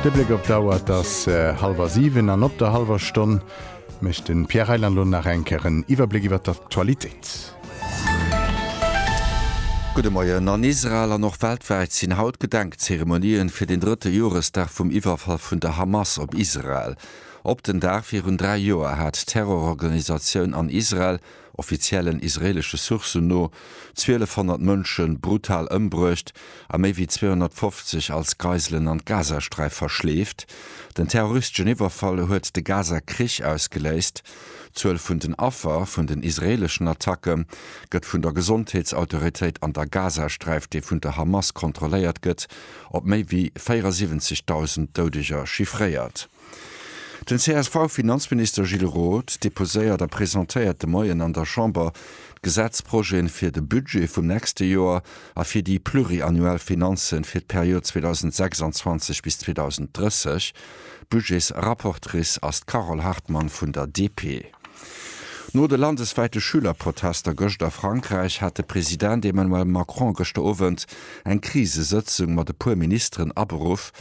De Bléck op d'Auer, et ass hallwer siwen. An op der hallwer Stonn mécht de Pierre Reyland elo nach eng Kéier en Iwwerbléck iwwer d'Aktualitéit. Gudde Moien. An Israel an och weltwäit sinn haut Gedenkzeremonien fir den drëtte Joresdag vum Iwwerfall vun der Hamas op Israel. Op den Dag virun dräi Joer hat d'Terrororganisatioun an Israel offiziellen israeelesche Sourcen no, 1.200 Mënsche brutal ëmbruecht a méi wéi 250 als Geiselen an d'Gazasträif verschleeft. Den terroristeschen Iwwerfall huet de Gaza-Krich ausgeléist. D'Zuel vun den Affer vun den israeeleschen Attacke gëtt vun der Gesondheetsautoritéit an der Gazasträif, dee vun der Hamas kontrolléiert gëtt, op méi wéi 74.000 Doudeger chiffréiert. Den CSV-Finanzminister Gilles Roth deposéiert a presentéiert de Moien an der Chamber d'Gesetzprojeten fir de Budget vum nächste Joer a fir déi pluriannuell Finanzen fir d'Period 2026 bis 2030. Budgets-rapportrice ass d'Carole Hartmann vun der DP. No de landeswäite Schülerprotester gëscht a Frankräich hat de President Emmanuel Macron gëschter Owend eng Krisesëtzung mat e puer Ministeren aberuff,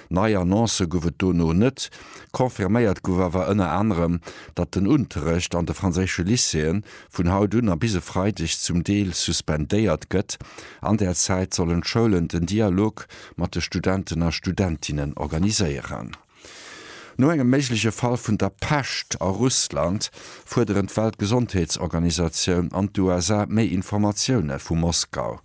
Nei Annoncë gouf et dono net. Confirméiert gouf awer ënner anerem, datt den Unterrecht an de franséische Lycéeën vun haut un a bis e Freideg zum Deel suspendéiert gëtt. An där Zäit sollen d'Schoulen den Dialog mat de Studenten a Studentinnen organiséieren. No engem méigleche Fall vun der Pescht a Russland fuerderen d'Weltgesondheetsorganisatioun an d'USA méi Informatioune vu Moskau.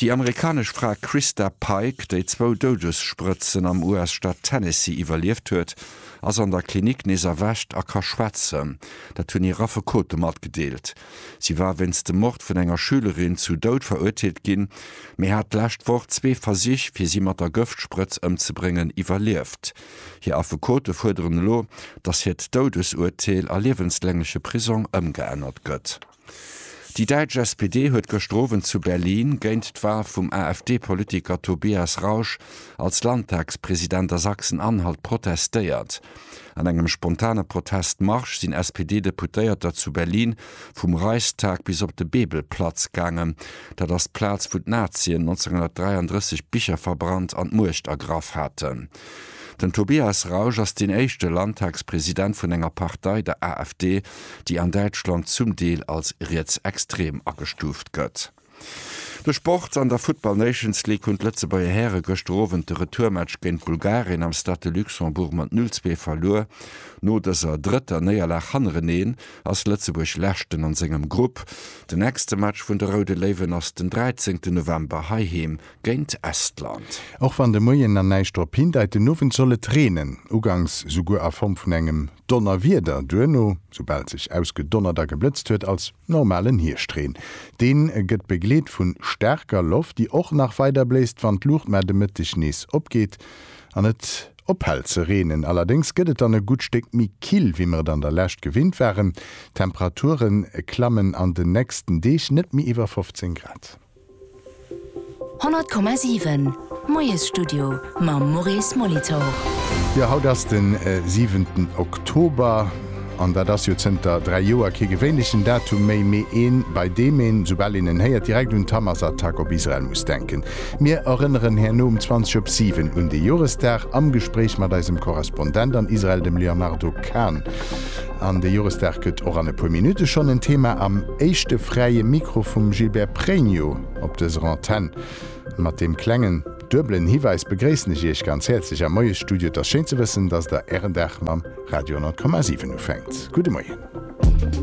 Déi amerikanesch Fra Christa Pike, déi zwou Doudessprëtzen am US-Staat Tennessee iwwerlieft huet, ass an der Klinik nees erwächt a ka schwätzen. Dat hunn hir Affekote matgedeelt. Si war wéinst dem Mord vun enger Schülerin zu Doud verurteelt ginn, mee hat d'lescht Woch zwee Versich, fir si mat der Gëftsprëtz ëmzebréngen, iwwerlieft. Hir Affekote fuerderen elo, datt hiert Doudesurteel a liewenslängleche Prisong ëmgeännert gëtt. Déi däitsch SPD huet gëschter Owend zu Berlin géint d'Wal vum AfD-Politiker Tobias Rausch als Landtagspresident a Sachsen-Anhalt protestéiert. An engem spontane Protestmarsch sinn SPD-Deputéierter zu Berlin vum Reichstag bis op de Bebelplatz gaangen, dat ass d'Plaz wou d'Nazien 1933 d'Bicher verbrannt an d'Muecht ergraff haten. Den Tobias Rausch ass deen éischte Landtagspresident vun enger Partei, der AfD, déi an Däitschland zum Deel als rietsextrem agestuuft gëtt. De Sport, An der Football Nations League hunn d'Lëtzebuerger Häre gëschter Owend de Retourmatch géint Bulgarien am Stade de Luxembourg mat 0, 2 verluer. No dëser drëtter Néierlag hannereneen ass Lëtzebuerg Leschten an sengem Grupp. Den nächste Match vun de Roude Léiwen ass den 13 November heiheem géint Estland. Och wann de Moien na näischt drop hindeit, den Owend soll et reenen, ugangs souguer a Form vun engem Donnerwieder, duerno, soubal sech ausgedonnert a geblëtzt huet, als normalen Hierscht-Reen. Dee gëtt begleet vu staarker Loft, déi och nach weider bléist, wann d'Luucht mar de Mëtteg nees opgeet an et ophält ze reenen. Allerdéngs gëtt et dann e gutt Stéck méi kill, wéi mer et an der Lescht gewinnt waren, d'Temperature klamme an den nächsten Deeg net méi iwwer 15 Grad. 100,7 Moiesstudio mam Maurice Molitor. Jo, haut ass den siwenten Oktober an dat ass jo zënter dräi Joer kee gewéinlechen Datum méi, mee een, bei deem een, soubal een en héiert, direkt un d'Hamas-Attack op Israel muss denken. Mir erënneren herno um 20 op 7 un dee Joresdag am Gespréich mat eisem Korrespondent an Israel, dem Léonardo Kahn. An de Joresdag gëtt och an e puer Minutte schonn en Thema am. Éischte fräie Mikro vum Gilbert Pregno op dëser Antenn. Mat deem klengen, duebelen Hiwäis begréissen ech Iech ganz häerzlech am Moiesstudio. Et ass schéin ze wëssen, dass Der Ären Dag mam Radio 10,7 ufänkt. Gudde Moien.